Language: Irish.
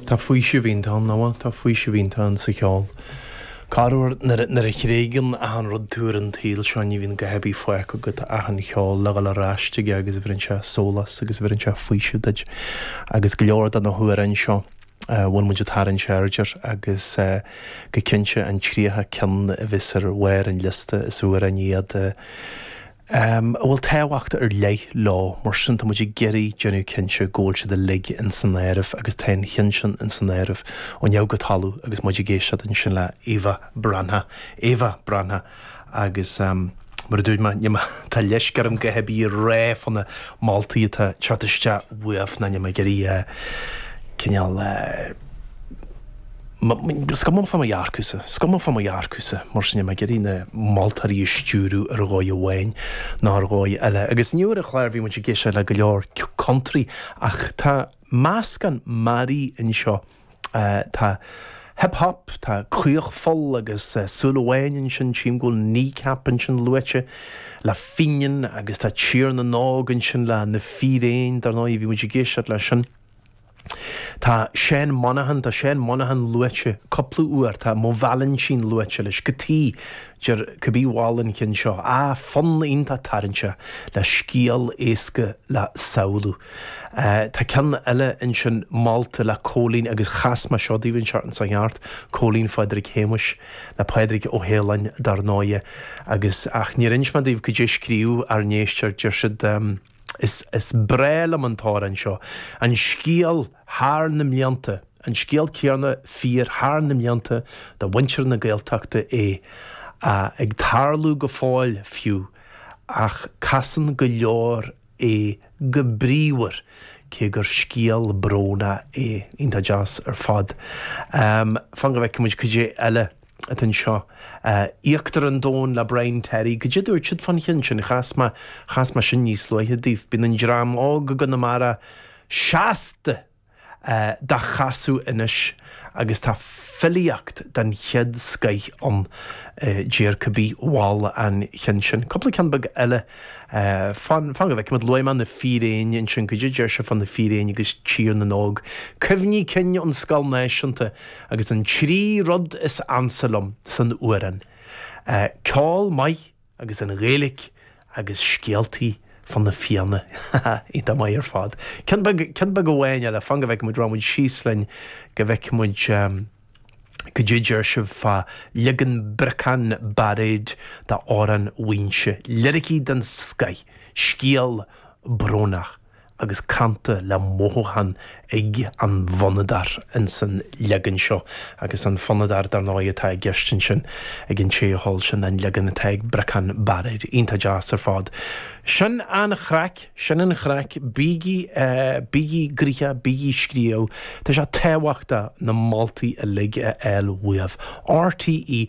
Tá faoiseamh iontach ann, nó tá faoiseamh iontach ann sa cheol. Corruair, nuair a thréigeann achan rud tú ar an tsaol seo, ní bhíonn a dhath ar bith fágtha agat ach an ceol le dhul ar ais chuige agus bheireann sé sólás agus bheireann sé faoiseamh duit. Agus go leor de na hamhráin seo, a bhfuil muid ag tarraingt aird air agus go cinnte an tríocha ceann a bheas ar bharr an liosta, is amhráin iad a bhfuil tábhacht ar leith leo. Mar sin, tá muid ag iarraidh déanamh cinnte go bhfuil siad uilig ins an áireamh agus tá an cionn sin ins an áireamh Ó Neamh go Talamh agus muid ag éisteacht ansin le Eva Breathnach, Eva Breathnach, agus mar a dúirt mé, níl mé, tá leisce orm a dhath ar bith a rá fá na moltaí atá teacht isteach uaibh, ná níl mé ag iarraidh cineál. Is cuma fá mo dhearcadh-sa. Is cuma fá mo dhearcadh-sa, mar sin níl mé ag iarraidh na moltóirí a stiúradh ar dhóigh amháin ná ar dhóigh eile. Agus inniu ar an chlár bhí muid ag éisteacht le go leor country ach tá meascán mearaí anseo. Tá hip hop, tá caochpholl agus súil amháin ansin, tchím go bhfuil Kneecap ansin luaite le Fenian agus tá Tír na nÓg ansin le Na Fíréin, dar ndóigh bhí muid ag éisteacht leis sin. Tá Seán Monaghan, tá Seán Monaghan luaite cúpla uair, tá Mo Vailintín luaite leis, goidé deir cibé a mhol an ceann seo, á, fonn iontach tarraingteach le scéal éasca le samhlú. Tá ceann eile ansin molta le Cóilín agus chas mé seo daoibh an tseachtain seo chuaigh thart, Cóilín Phádraig Shéamais, le Pádraig Ó hAoláin dar ndóighe, agus, ach níor inis mé daoibh goidé a scríobh ár n-éisteoir, deir siad, Is is breá liom an t-amhrán seo. An scéal thar na mblianta, an scéal céanna fíor thar na mblianta do mhuintir na Gaeltachta, é ag tarlú go fóill fiú, ach casann go leor é go bríomhar, cé gur scéal brónach é. Iontach deas ar fad. Fan go bhfeicfidh muid cad é eile. Atá anseo. Íochtar an Domhain le Brian Terry. Goidé dúirt siad fán cheann sin? Chas mé, chas mé sin níos luaithe daoibh. Bíonn an dream óg i gConamara seasta dá chasadh anois agus tá filíocht den chéad scoith ann. Deir cibé a mhol an ceann sin. Cúpla ceann beag eile. Fan, fan go bhfeicimid. Luaigh mé Na Fíréin ansin. Goidé deir sé fá Na Fíréin agus Tír na nÓg? Cuimhní cinn ón scoil náisiúnta. Agus an trí rud is ansa liom san amhrán, ceol maith agus an Ghaeilic agus scéaltaí fá na Fianna. Iontach maith ar fad. Ceann beag, ceann beag amháin eile, fan go bhfeice muid, raghaidh muid síos linn go bhfeice muid, goidé deir sibh fá leagan Briocán Bairéid d'Amhrán Mhaínse. Liricí den scoith, scéal brónach agus canta le mothúchán ag an bhfonnadóir insan leagan seo, agus an fonnadóir, dar ndóigh, atá i gceist ansin ag an té a mhol sin an leagan atá ag Briocán Bairéad. Iontach deas ar fad. Sin an chraic, sin an chraic, bígí, bígí gnoitheach, bígí scríobh, tá sé tábhachtach na moltaí uilig a fháil uaibh. RTE.